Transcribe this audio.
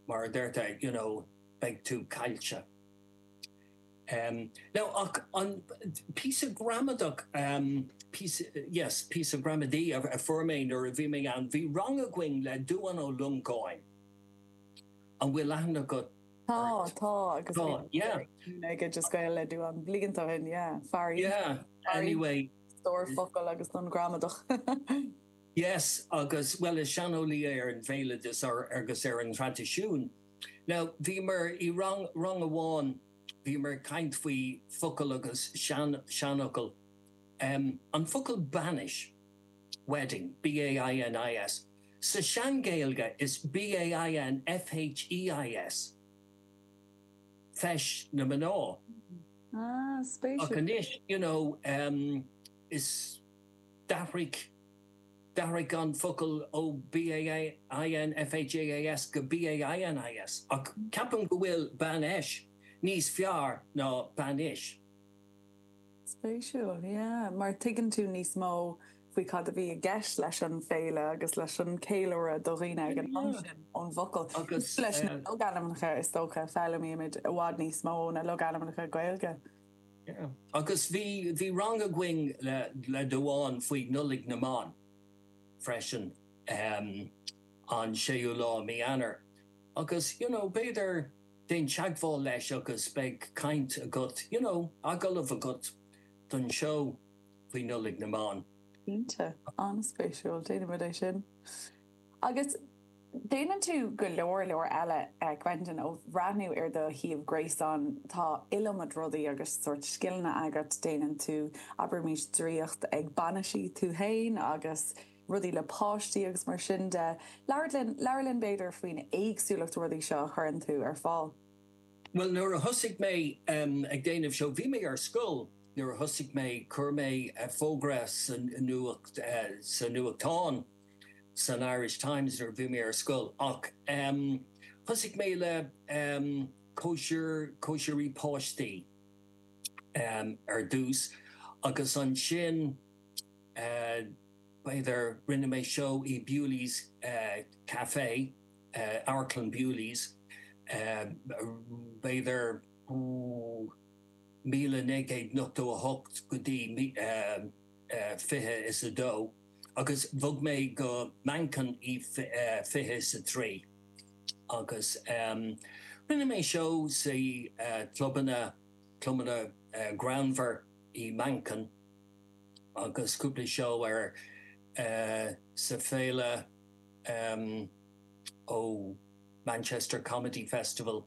mar a deirtear, you know, beidh tú caillte. Em, now, ach an, píosa gramadach, em, píosa, yes, píosa gramadaí a fuair mé nuair a bhí mé ann, bhí rang againn le Dubhán Ó Longáin, an bhfuil aithne agat Tá, tá, agus tá, yeah. Ag ag just gabháil le Dubhán bliain ó shin, yeah, far. Yeah, anyway. Stór focail agus don gramadach. Yes agus, bhuel, is seaneolaí é ar an bhéaloideas agus ar an traidisiún. Now, bhíomar i rang, rang amháin, bhíomar ag caint faoi focal agus sean, seanfhocail. Em, an focal bainis, wedding, B-a-i-n-i-s, sa sean-Ghaeilge is B-a-i-n-f-h-e-i-s, feis na mná. Ah, spéisiúil. Ach anois, you know, em. d'athraigh d'athraigh an focal ó B-a-i-n-f-h-e-i-s go B-a-i-n-i-s, ach ceapaim go bhfuil bainfheis níos fearr ná bainis. Spéisiúil, yeah, mar tuigeann tú níos mó faoi cad a bhí i gceist leis an féile agus leis an ceiliúradh do dhaoine ag an am sin ón bhfocal. Agus. Leis na logainmneacha, is dócha, foghlaimímid i bhfad níos mó ó na logainmneacha Gaeilge. Agus bhí, bhí rang againn le Dubhán faoi Nollaig na mBan freisin, an séú lá i mí Eanáir. Agus you know b'fhéidir déan teagmháil leis agus beidh caint agat, you know agallamh agat don seó faoi Nollaig na mBan. Cinnte. An-spéisiúil. Déanfaimid é sin. Agus déanann tú go leor leor eile, a Quentin. Ó bhreathnú ar do shuíomh gréasáin, tá iliomad rudaí agus sórt scileanna agat. Déanann tú, abraimís, draíocht ag bainiseacha, tú féin, agus rudaí le páistí agus mar sin de. Labhair linn, labhair linn, b'fhéidir, faoin éagsúlacht rudaí seo a chuireann tú ar fáil. Bhuel, nuair a thosaigh mé ag déanamh seo, bhí mé ar scoil nuair a thosaigh mé, chuir mé fógra sa nuacht, sa nuachtán, san Irish Times nuair a bhí mé ar scoil ach thosaigh mé le cóisir, cóisirí páistí ar dtús agus ansin b'fhéidir rinne mé seó i Bewley's Café, Amharclann Bewley's, b'fhéidir 1998 go dtí 2002. agus bhog mé go Manchain i fiche is a trí agus rinne mé seó sa clubanna clubanna greannmhar í Manchain agus cúpla seó ar sa féile ó Manchester Comedy Festival